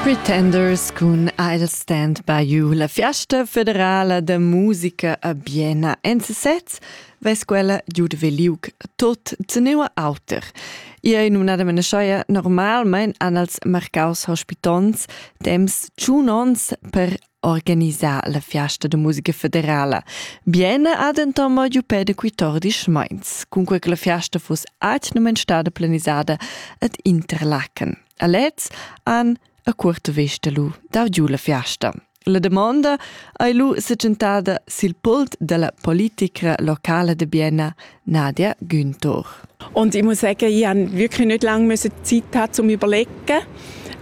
Pretenders cun I'll Stand By You, la fiasta federala da musica a Biena en sesez, ves quella giud veliuc tot teneua auter. Ia in unadament schoia normalmein an als marcaus hospitons temps tschun ons per organisar la fiasta de musica federala. Biena ha denton mo giu pede quitordis meins, cun quei che la fiasta fuss atnumen stada planisada ad Interlaken. A lez han a cuorta vesta lu dau giu la fiasta. La damonda ei lu setgentada sil pult dalla politicra locala de Bienna, Nadia Günthor. Und ich muss sagen, ich habe wirklich nicht lange müssen Zeit haben, um zu überlegen,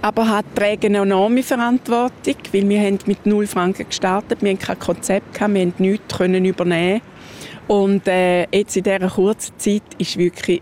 aber habe die regenonome Verantwortung, weil wir haben mit 0 Franken gestartet, wir hatten kein Konzept, wir konnten nichts übernehmen und äh, jetzt in dieser kurzen Zeit ist wirklich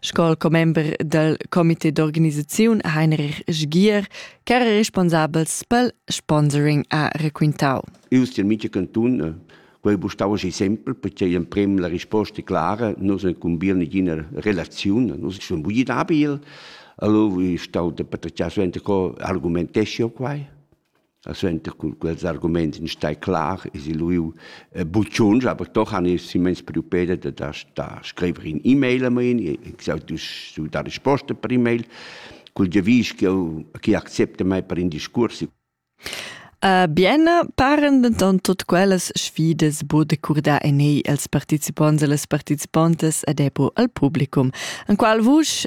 Sco commember dal comité d'organisaziun Heinrich Sgier ch'era responsabels pel sponsoring ha requintau. Eu stil mica cantun, eh, quei bu stau aschi sempel, perché emprem la risposta è clara, nus incumbir nigina relaziun, nus sun bugi dabil, allora stau de patacciar suenter co argumentescio quai. E suenter cun quels arguments in stai clar e si lu bucciuns, aber doch han ich simmens preoccupate da da da scriver in e-mail a mein, ich sag du da risposta per e-mail cul devis che chi accepta mai per in discurs. Uh, bien paren denton tot quellas sfidas bude curda en ei als participonts e las participontas ed epo al publicum. En qual vusch